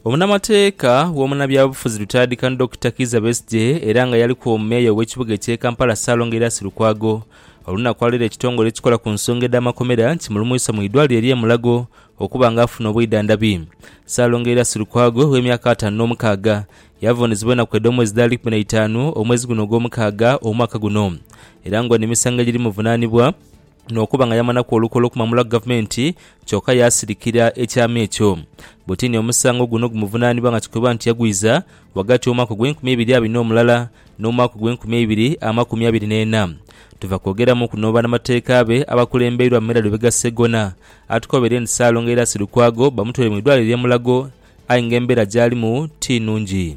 Omunamateeka w'omunabyabufuzi Lutayadikano Dokita Kizza Besigye era nga yaliku omumeeya ow'ekibuga ekye Kampala Ssalongo Erias Lukwago olunakwaalaire ekitongole ekikola ku nsonga edh'amakomera nti mulumuisa mu idwaliro erye Mulago okuba nga afuna obwidhandhabi. Ssalongo Erias Lukwago ow'emyaka ataanu n'omukaaga yavunizibwa enaku edh'omwezi dhali kumi na itaanu omwezi guno ogw'omukaaga omwaka guno era nga ono emisango egiri muvunanibwa n'okuba nga yamanaku olukwe olw'okumwamulaku gavumenti kyoka yaasirikira ekyama ekyo. Butini omusango guno gumuvunaanibwa nga kikoibwa nti yagwiza ghagati w'omwaka ogw'enkumi eibiri abina omulala n'omwaka ogw'enkumi eibiri amakumi abiri n'ena. Tuva kwogeramu kuno banamateeka be abakulembeirwa Mera Lubega Ssegona atukobeire nti Ssaalongo era Silukwago bamutwale mu idwaliro lye Mulago aye nga embeera gyalimu ti nungi.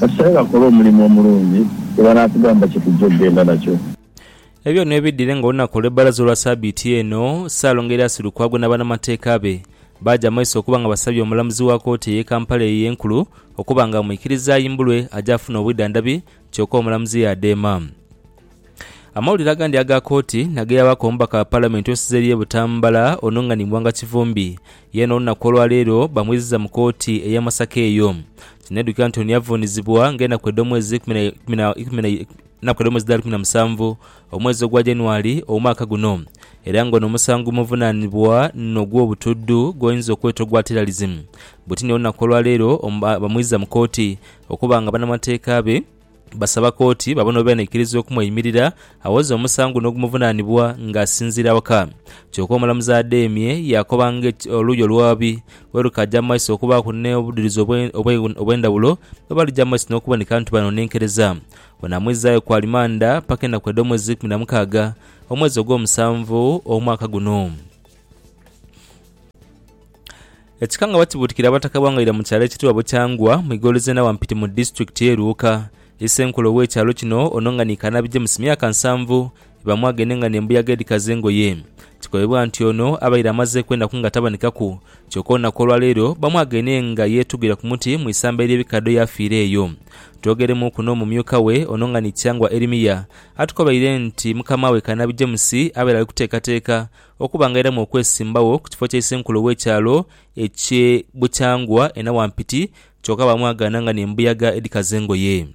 Kasenga kola omulimu omulungi gwe banaatugamba kye tujja okugenda nakyo. Ebyo byona webidhire nga olunaku olw'ebbalaza olwa sabiiti eno, Ssaalongo Erias Lukwago na banamateeka be baaja amaiso okuba nga basabye omulamuzi wa kooti eye Kampala eyo enkulu okuba nga amwikiriza ayimbulwe aje afune obwidhandhabi kyoka omulamuzi yaadheema. Amawulire agandi aga kooti nageyabaku omubaka wa palamenti osize eri e Butambala ono nga ni Mwanga Kivumbi yeena olunaku olwaleero bamwiziza mu kooti eya Masaka eyo. Kinedhukira nti ono yavunizibwa nga enaku edhomwezi enaku edhomwezi dhali kumi na musanvu omwezi ogwa January omwaka guno era nga ono omusango omuvunanibwa nogwobutudhu gwoyinza okweta ogwa terrorism butini olunaku olwaleero bamwiziza mu kooti okuba nga banamateeka be Basaba kooti babone oba enaikiriza okumweimirira awoze omusango guno ogumuvunanibwa nga asinziira waka. Kyoka omulamuzi adheemye yaakoba nga oluuyi oluwaabi bwerukaaja mu maiso okubaaku n'obudhirizi obwendhawulo bwe balija mu maiso n'okuboneka nti banonenkereza. Ono amwizaayo ku alimanda paka enaku edh'omwezi eikumi na mukaaga omwezi ogw'omusanvu omwaka guno. Ekika nga bakibuutikira Abataka bwa Ngaira mu kyalo ekitibwa Bukyangwa mu ighoolo z'e Nawampiti mu disitulikiti ye Luuka. Isenkulu ow'ekyalo kino ono nga ni Kanabi James myaka nsanvu bamwaaga eno enga n'embuyaga edhikaza engoye. Kikobebwa nti ono abaire amazeeku enaku nga tabanikaku kyoka olunaku olwaleero bamwaaga eno enga yeetugira ku muti mu isamba ery'ebikadho yaafiira eyo. Twogeremuuku n'omumyuka we ono nga ni Kyangwa Erimia atukobaire nti mukamaawe Kanabi James abaire ali kuteekateeka okubangairamu okwesimbagho ku kifo kya isenkulu ow'ekyalo eky'e Bukyangwa e Nawampiti kyoka baamwagaana nga n'embuyaga edhikaza engoye.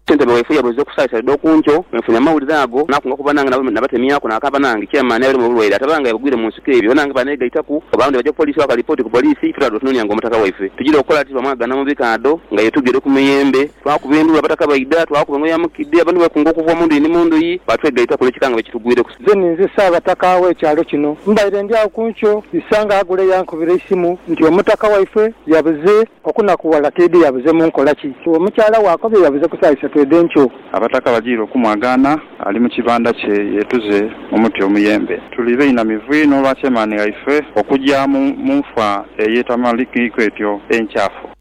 Ssentebe waife yabuuza okusaalisa dha oku nkyo bwe nfunye amawulire ago naakunga okuba nange nabo nabatemyaku naakaaba nange. Chairman abeere mu bulwaire ataba nga yabugwire mu nsiko ebyo banange baaneegaitaku oba abandi baja ku poliisi bakola lipooti ku poliisi ife twali tunoonia nga omutaka waife tugira okukola ati twamwagaana mu bikaadho nga ye tugere ku miyembe twakuba endulu abataka baidha twakuba engoye ya mukidde abantu beekunga okuva mu ndhuyi ni mu ndhuyi baatwegaitaku olw'ekikangabwa ekitugwireku Nze ni nze Ssaabataka w'ekyalo kino. Mbaire ndi agho ku nkyo, Isanga Agule yankubira eisimu nti omutaka waifwe yabuze. Okunakuwala twidhi yabuze mu nkola ki? Omukyala we akobye yabuze ku saa isatu edh'enkyo. Abataka bajiire okumwagaana, ali mu kibanda kye yeetuze mu muti omuyembe. Tuli bainamivu inho olwa chairman waife okugya mu nfa ey'etamanhikiku etyo enkyafu.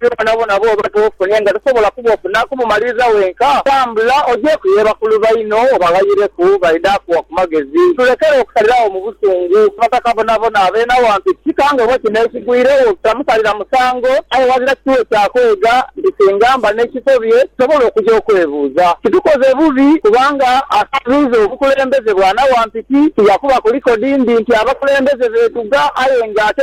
Ate bwonabwona bw'oba toofunhe nga tosobola kubofuna kubumaliriza wenka, tambula ojeeku ye bakulu baino obaghayireku, baidha kuwa ku magezi. Tulekere okusaliragho mu busungu. Abataka bonabona abeena wantu kika ng'oba kino ekigwiregho kitamusalira musango, aye ghazira kituwe kya kwega nti singa mba n'ekisobye nsobola okuja okwebuuza. Kitukoze bubi kubanga asabiiza obukulembeze bwanawampiki. Tija kubaku likodi mbi nti abakulembeze beetuga aye ng'ate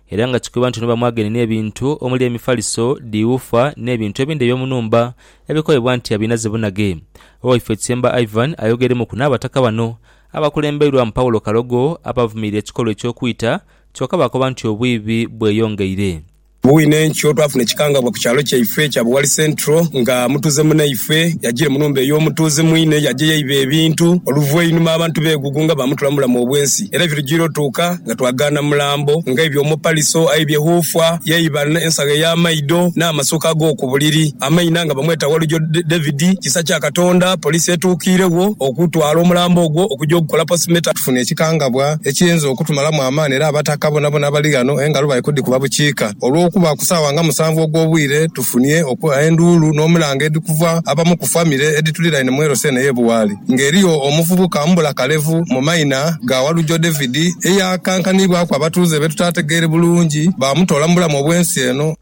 Era nga kikoibwa nti ono bamwageine n'ebintu omuli emifaliso, dhiwuufa, n'ebintu ebindi eby'omu nhumba ebikoibwa nti abinaze bunage. Owaifo Kisemba Ivan ayogeremuku n'abataka bano abakulembeirwamu Paulo Kalogo abavumirira ekikolwa eky'okwita kyoka baakoba nti obwiibi bweyongeire. Bwine enkyo twafuna ekikangabwa ku kyalo kyaife ekya Buwali Central nga mutuuze munaifwe yajiire mu nhumba ey'omutuuze mwine yajeyo eiba ebintu oluvainhuma abantu begugunga bamutula mu bulamu obwensi era ebirujiire otuuka nga twagaana mulambo, nga aibye omupaliso, aibye huufwa, yaibanha ensagho ey'amaido, n'amasuuka ag'oku buliri. Amaina nga bamweta Walujo David. Kisa kya Katonda, poliisi etuukiiregho okutwala omulambo ogwo okugya ogukola postmortem. Tufunha ekikangabwa ekiyinza okutumalamu amaani era Abataka boonaboona abali ghano engalo bali kudhikuba bukiika olw'okuba ku saawa nga musanvu ogw'obwire tufunhye enduulu n'omulanga edhikuva abamu ku famire edhituliraine mu LC eno ey'e Buwaali. ng'eriyo omuvubuka mbula kalevu mu maina ga Walujo David eyaakankanibwaku abatuuze be tutaategeere bulungi baamutoola mu bulamu obw'ensi eno.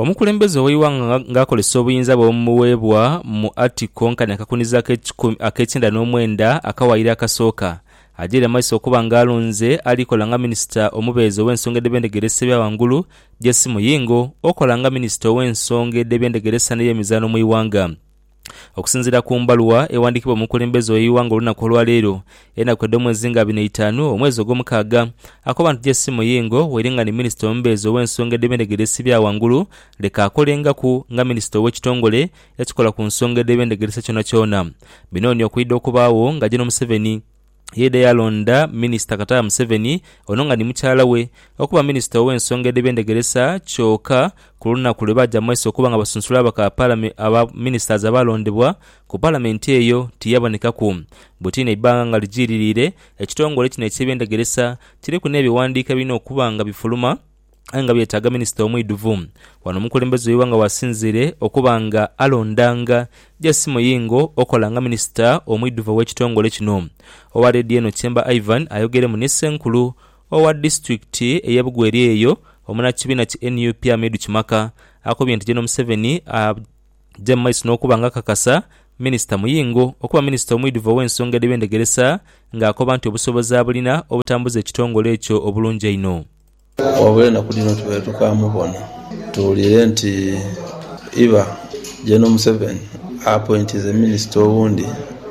Omukulembeze ow'eighanga nga akozesa obuyinza bwe obumuweebwa mu Article nkani akakuniza ak'ekikumi ak'ekyenda n'omwenda akawaayiro akasooka, agyaire maiso okuba nga alonze ali kola nga minisita omubeezi ow'ensonga edh'ebyendegeresa ebya ghangulu, JC Muyingo, okola nga minisita ow'ensonga edh'ebyendegeresa n'eyemizaano mu ighanga. Okusinziira ku mbaluwa ewandiikibwa omukulembeze ow'eighanga olunaku olwaleero, enaku edh'omwezi nga abiri n'eitaanu omwezi ogw'omukaaga, akobantu Jesse Muyingo waire nga ni minisita omubeezi ow'ensonga edh'ebendegere esibya ghangulu leka akolengaku nga minisita ow'ekitongole ekikola ku nsonga edh'ebendegere se kyonakyona. Bino ni okwidha okubaagho nga Gen Museveni, Yeidha yalonda Minisita Kataha Museveni, ono nga ni mukyala we, okuba Minisita ow'ensonga edh'ebyendegeresa kyoka ku lunaku lwe baaja mu maiso okuba nga basunsula ababaka aba Ministers abaalondebwa ku Palamenti eyo tiyabonekaku. Butiini eibbanga nga lijiiririire, ekitongole kino eky'ebyendegeresa kiriku n'ebighandiiko ebirina okuba nga bifuluma, aye nga byetaaga minisita omwidhuvu. Wano omukulembeze w'eighanga wasinziire okuba nga alondanga JC Muyingo okola nga minisita omwidhuvu ow'ekitongole kino. Owa leediyo eno Tyemba Ivan ayogeremu ni ssenkulu owa disitulikiti ey'e Bugweri eyo omunakibiina ki nup Amidu Kimaka akobye nti General Museveni aja mu maiso n'okuba nga akakasa minisita Muyingo okuba minisita omwidhuvu ow'ensonga edh'ebyendegeresa nga akoba nti obusobozi abulina obutambuza ekitongole ekyo obulungi einho. Wabula enaku dhino tubaire tukamubona. Tuwulire nti iba Gen Museveni appointinze minister owundi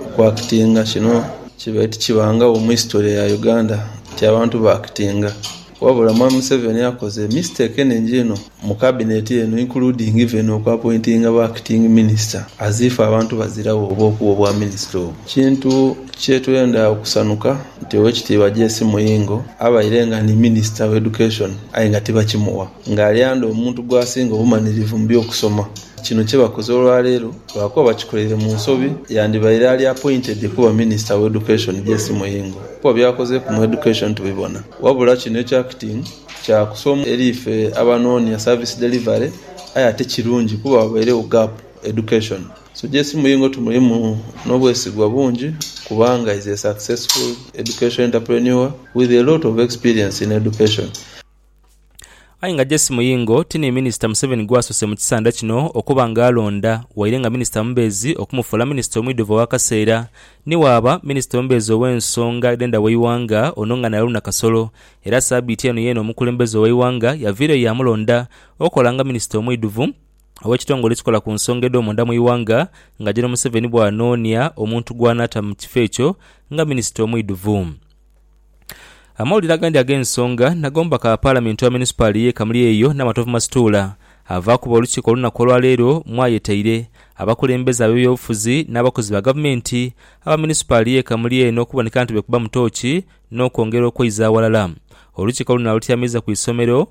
oku actinga. Kino kibaire tikibangagho mu history ya Uganda nti abantu ba actinga. Wabula Mwami Museveni akoze mistake enhingi inho. Mu Cabinet eno including even oku appointinga ba Acting Minister as if abantu baziragho oba okuwa obwa Minister obwo. Kintu kyetwenda okusanuka nti Owekitiibwa JC Muyingo abaire nga ni Minister wa Education aye nga tibakimuwa nga alyanda omuntu gwasinga obumanirivu mu byokusoma. Kino kyebakoze olwaleero lwakuba bakikoleire mu nsobi yandibaire ali appointed kuba Minister wa Education JC Muyingo kuba byakozeeku mu Education tubibona wabula kino ekya Acting Kya kusoomooza eri ife abanoonia service delivery aye ate kirungi kuba wabairegho gap education. Suggest mu Ingo tumulimu n'obwesigwa bungi kubanga is a successful education entrepreneur with a lot of experience in education. Aye nga Jesse Muyingo ti ni minisita Museveni gw'asoose mu kisanda kino okuba nga alonda waire nga minisita omubeezi okumufuula minisita omwidhuvu ow'akaseera ni waaba minisita omubeezi ow'ensonga edh'endha w'eighanga ono nga naye alunda kasolo Era sabiiti eno yeene omukulembeze ow'eighanga yaviireyo yaamulonda okola nga minisita omwidhuvu ow'ekitongole ekikola ku nsonga edh'omunda mu ighanga nga Gen Museveni bw'anoonia omuntu gw'anaata mu kifo ekyo nga minisita omwidhuvu. Amawulire agandi ag'ensonga nagomba ka Palamenti owa munisipaali y'e Kamuli eyo Namatovu Masituula avaakuba olukiiko olunaku olwaleero mwayetaire abakulembeze ab'ebyobufuzi n'abakozi ba gavumenti aba munisipaali y'e Kamuli eno okuboneka nti beekubamu tooki n'okwongera okweiza aghalala. Olukiiko luno alutyamiza ku isomero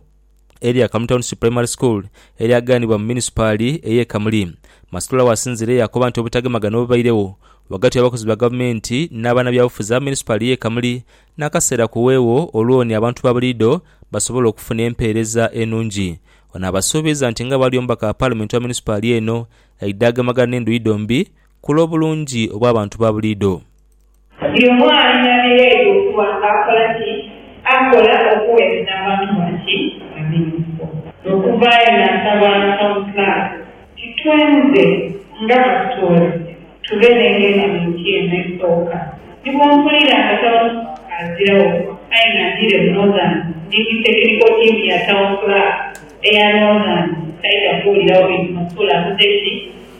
erya Kamuli Township Primary School eryaganibwa mu munisipaali ey'e Kamuli. Masitula waasinziire yaakoba nti obutagemagana obubairegho ghagati w'abakozi ba gavumenti na banabyabufuzi aba munisipaali y'e Kamuli n'akaseera kuweegho olwoni abantu ba buliidho basobole okufuna empeereza enungi. Ono abasuubiza nti nga bwali omubaka wa paalamenti owa munisipaali eno aidha agemagana n'endhuyi dhombi ku lw'obulungi obw'abantu ba buliidho. Buli omu alina bye yeidha okuba nga akola ki? Akola okugheereza abantu ba ki? Ba Minisita. Okuvaayo naasaba Kawunsulaasi Kitwenze nga batutoolese tube n'engendamuiti eno esooka. Ni bwe mpulira nga Tawunsulaasi aziragho aye nga ndiire mu Northern ndi ni tekiniko tiimu ya Tawunsulaasi eya Northern, saidha kuwuliragho bintu Masuula akoze ki?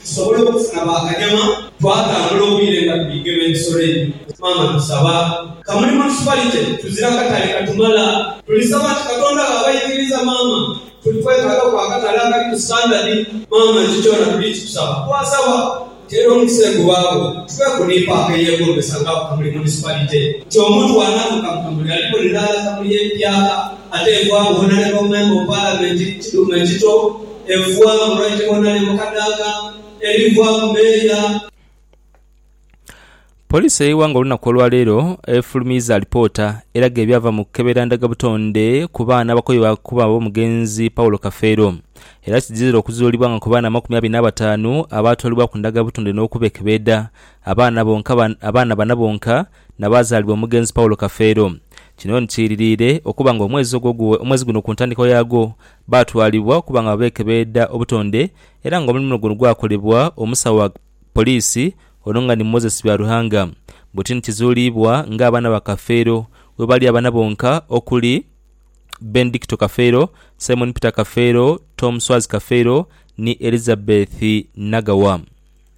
Tusobole okufuna ba kanyama twatambula obwire nga tuli gema ebisolo ebyo. Maama tusaba kamulimo tusibalite tuzira katale katumala. Tulisaba nti Katonda bwaba aikiriza maama tuli kwetaaga ku akatale akali ku standard. Maama nti kyona tuli kikusaba. Twasaba nti era omukisa egubaagho tuve ku ni paaka eyegombesa nga ku kamuli munisipalite nti omuntu bwanatuuka mu kamuli alibonera ghala kamuli empya ate enkwago bwonaleka omemba mu palamenti kiduuma ekito. Evua mu Raitibona ne mu Kadaga erivua mu Beria. Poliisi y'eighanga olunaku olwaleero efulumiiza alipoota eraga ebyava mu kukebera ndhaga butonde ku baana abakoibwa okuba ab'omugenzi Paulo Kafeero era kidhizira okuzuulibwa nga ku baana amakumi abiri n'abataanu abaatwalibwaku ndhaga butonde n'okubekebeedha abaana bana bonka nabaazaalibwa omugenzi Paulo Kafeero. Kino ni kiiririire okuba nga omwezi guno ku ntandikwa yaagwo baatwalibwa okuba nga beekebeeda obutonde era nga omulimu guno gwakolebwa omusawo wa poliisi ono nga ni Moses Byaruhanga buti ni kizuuliibwa ng'abaana ba Kafeero webali abaana bonka okuli Benedicto Kafeero, Simon Peter Kafeero, Tom Swazi Kafeero ni Elizabeth Nagawa.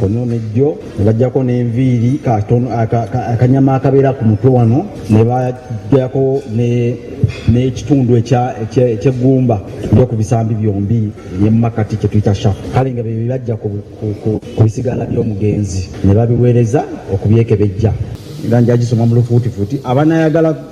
Kono ni jo bajako n'enviiri akanyama akabeera ku mutwe wano, ni bajako n'ekitundu eky'eggumba ery'oku bisambi byombi ni mu makati kye twita shaft. Kale nga bye baja ku bisigala by'omugenzi ni babigheereza okubyekebejja. Era nja gisoma mu lufuutifuuti. Abanaayagala.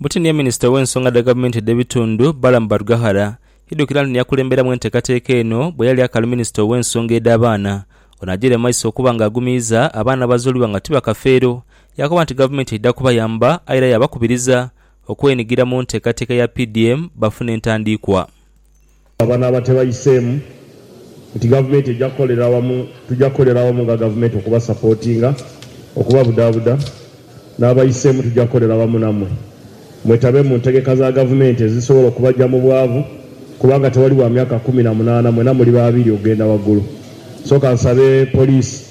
Butini ye minisita ow'ensonga dha gavumenti edh'ebitundu, Balaam Barugahara idhukira nti niyakulemberamu enteekateeka eno bwe yali akaali minisita ow'ensonga edh'abaana. Ono agyeire mu maiso okuba nga agumiiza abaana abazuulibwa nga ti bakafeero yaakoba nti gavumenti eidha kubayamba aye era yaabakubiriza okwenigira mu nteekateeka ya PDM bafune entandiikwa. Banaaba tebayiseemu nti gavumenti eja kukolera wamu, tuja kukolera wamu nga gavumenti okubasapotinga, okubabudaabuda. N'abayiseemu tuja kukolera wamu namwe mwetabe mu ntegeka za gavumenti ezisobola okubaja mu bwavu kubanga tewali wa myaka kumi na munaana mwena muli babiri okugenda waggulu. So kansabe poliisi.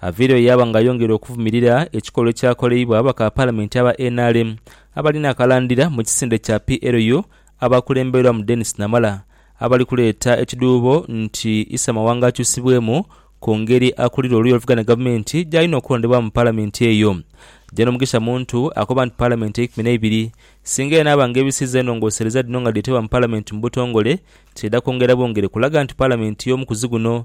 Aveiro yaaba nga ayongera okuvumirira ekikolwa ekyakoleibwa bakapalamenti aba nrm abali n'akalandira mu kisinde kya PLU abakulemberwamu Denis Namala abali kuleeta ekidhuubo nti Issa Mawanga akyusibwemu ku ngeri akulira oluuyi oluvuga ni gavumenti gy'alina okulondebwamu mu palamenti eyo. Gen Mugisha Muntu akoba nti palamenti eikumi n'eibiri singa enaaba nga ebisizza enhongosereza dhino nga dheetebwa mu palamenti mu butongole, kidha kwongera bwongere kulaga nti palamenti y'omukuzi guno